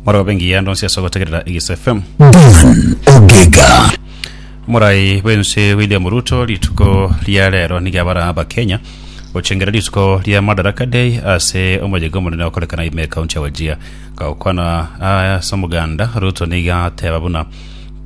Mwaraba bengi ya ndonsi ase ogotegerera Igis FM. Dan Ogega. Morai bwense William Ruto rituko ria rero niga bara abakenya gochengera rituko ria Madaraka Day ase omojega omonene okorekana ime kaunti ya Wajir gagokwana ase omoganda Ruto niga ateba buna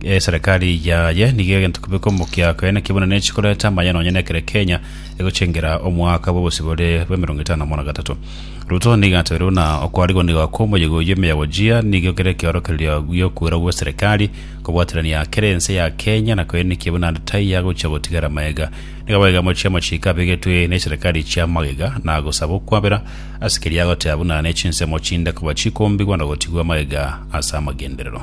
eh, serikali yaye niga egento kibe komokia koyene kibuna nechi koreta amaya nonye nekere Kenya egochengera omwaka bw'obosibore bwa emerongo etano na gatatu Ruto nigo atebeire buna okwarigoniga kw'omoyega oyio emeyabojia nigo kere ekeorokererio gi'okwera gw'eserekari kobwaterania kera ense ya Kenya na koenekia buna taiya gochia gotigara mayega. Nigo abaiga amochie amachiko abegetwe neserekari chia magega na gosaba okwabera ase keria agoteba buna nechinsemo chinde koba chikombigwa na gotigwa magega ase amagenderero.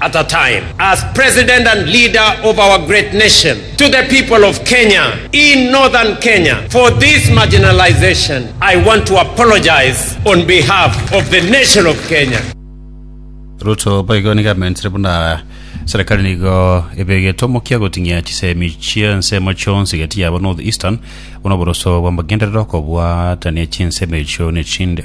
at a time as president and leader of our great nation to the people of Kenya in Northern Kenya for this marginalization I want to apologize on behalf of the nation of Kenya. Ruto boigo nigo amentire buna serikali nigo ebegete omokia goting'ia chisemi chi'ensemo chionsi gati yabo North Eastern buna oboroso bw'amagenderero okobwatania chinsemo echio nechinde.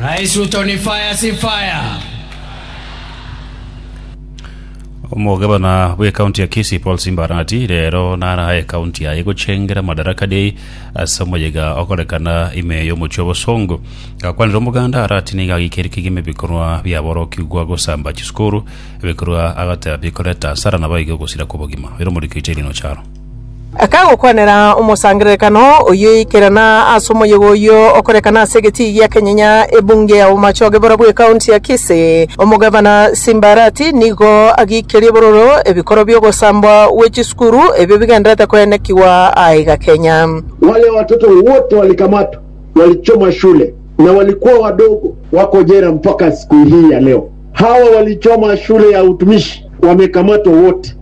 Rais Ruto ni fire si fire. Omogabana bw'ekaunti ya Kisii Paul Simba Arati rero naraha ekaunti yaye gochengera Madaraka Day ase omoyega okorekana ime y'omochie obosongo. Gakwanire omoganda Arati nigo agikeire kegima ebikorwa biaborokigwa gosamba chisukuru, ebikorwa agateba bikoreta asara naboigo ogosira kw'obogima. Rero omorikiri Terry Nocharo. Akagokwanera omosangererekano oyio ikerana ase omoyega oyio okorekana ase egetii gia Kenyenya, ebunge ya bomachoge borobwo ekaunti ya Kisii. Omogavana Simbarati nigo agiikerie bororo ebikoro bi'ogosambwa gwe chisukuru ebio bigendererete koenekigwa aiga Kenya. Wale watoto wote walikamatwa, walichoma shule na walikuwa wadogo wako jela mpaka siku hii ya leo. Hawa walichoma shule ya utumishi wamekamatwa wote.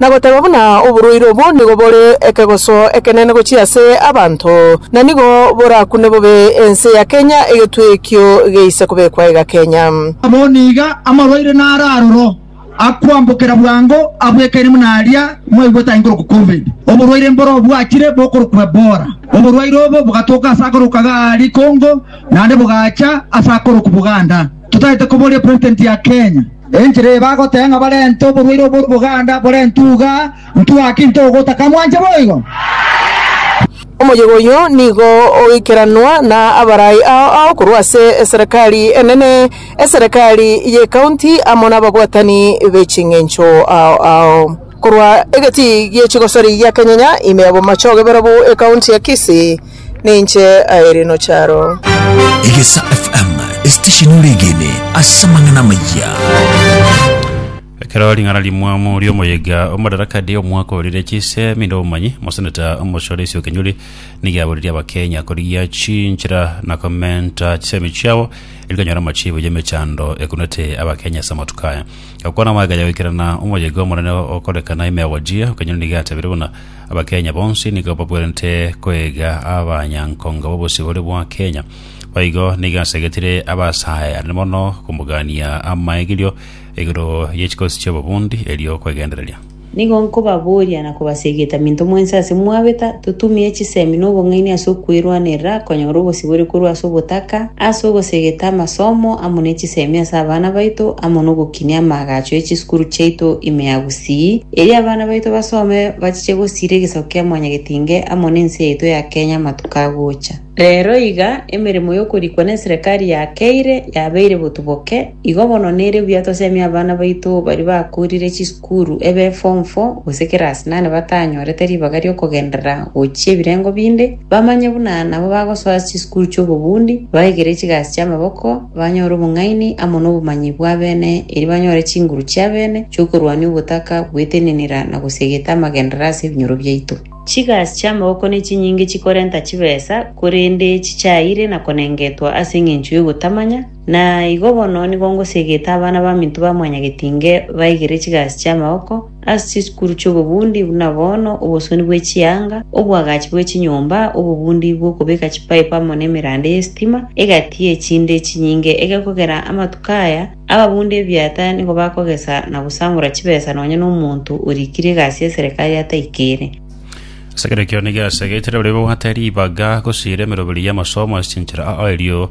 na goteba buna oborwaire obo nigo bore ekegoso ekenene gochia ase abanto, na nigo borakune bobe ense ya Kenya egetwe ekio geise kobekwa iga Kenya. Amo niga amarwaire naro aroro akoambokera bwango abwekaine buna aria mwaigwete aye nkorokwa Covid. Oborwaire mboro bwachire bokorokwa Ebola. Oborwaire obo bogatoka ase akoroka g'Ali Congo naende bogacha ase akoroku Buganda totaete koboria President ya Kenya. Enchera eye bagoteba ng'a barente oborwaire obo boganda bore ntuga, ntwaki ntogota kamwanche boigo? Omoyega oyio nigo ogoikeranwa na abarai ao ao korwa ase eserekari enene, eserekari y'ekaunti amo n'ababwatani be ching'encho ao ao. Korwa egetii gie chigosori gia Kenyenya, ime ya bomache ogebera bu ekaunti ya Kisii. Ninche aeri nocharo. Egesa FM, esitesheni oregene ase amang'ana amayia. Ekero ring'ana rimwamu riomoyega omodarakade omwaka orire chise minde omomanyi moseneta omochore isio kenyuri nigiaboririe abakenya korigia chinchera na komenta chisemi chiabo erikanyora amachibo yemechando ekunete abakenya ase amatuko aya gakwana magega yagoikerana omoyega omonene okorekana imegojia kenyuri nigiatabire buna Abakenya bonsi nigo babwerenete koiga abanyankonga b'obosibore bwa Kenya. Boigo nigo asegetire abasae anene mono komogania amaegerio igoro ye chikosi chi'obobundi erio kwegendereria. Nigo nkobaboria na kobasegeta minto mwensi ase mwabeta, totumie chisemi na obong'aini ase okwerwanerera konyora obosibore korwa ase obotaka, ase ogosegeta amasomo amo ne chisemi ase abana baito, amo nogokinia amaagacho ye chisukuru chiaito ime ya gusii. Erio abana baito basome bachiche gosiira egesaku kia Mwanyagetinge amo nense yaito ya Kenya amatuko agocha. Rero iga emeremo y'okorikwa neserekari ya Keire yabeire botuboke, igo bono nere buya tosemie abana baito baria bakoorire chisukuru ebe form four gose kerasi nane batanyorete ribaga ri'okogenderera gochia ebirengo binde, Bamanye buna nabo bagosoa chisukuru chi'obobundi, baigere chigasi chi'amaboko, banyore obong'aini amo nobomanyi bw'abene, erio banyore chinguru chi'abene chi'okorwania ogotaka gwetenenera na gosiegeta amagenderero ase ebinyoro biaito. Chigasi chi'amaboko nechinyinge chikorenta chibesa, korende chichaeire na konengetwa ase engencho y'ogotamanya, na igo bono nigo ngosiegeta abana baminto ba mwanyagetinge baigere chigasi chi'amaboko, Ase chisukuru chi'obobundi buna bono, obosoni bwe chianga, oboagachi bwe chinyomba, obobundi bw'okobeka chipaipu amo nemerande y'esitima egati ye chinde chinyinge egekogera amatuko aya, ababundi ebiata nigo bakogesa na gosangora chibesa nonya nomonto orikire egasi ya serekari ataikere. Ase ekero ekio nigo asegete barabwo babwate ribaga gose eremeroberi y'amasomo ase chinchera ao erio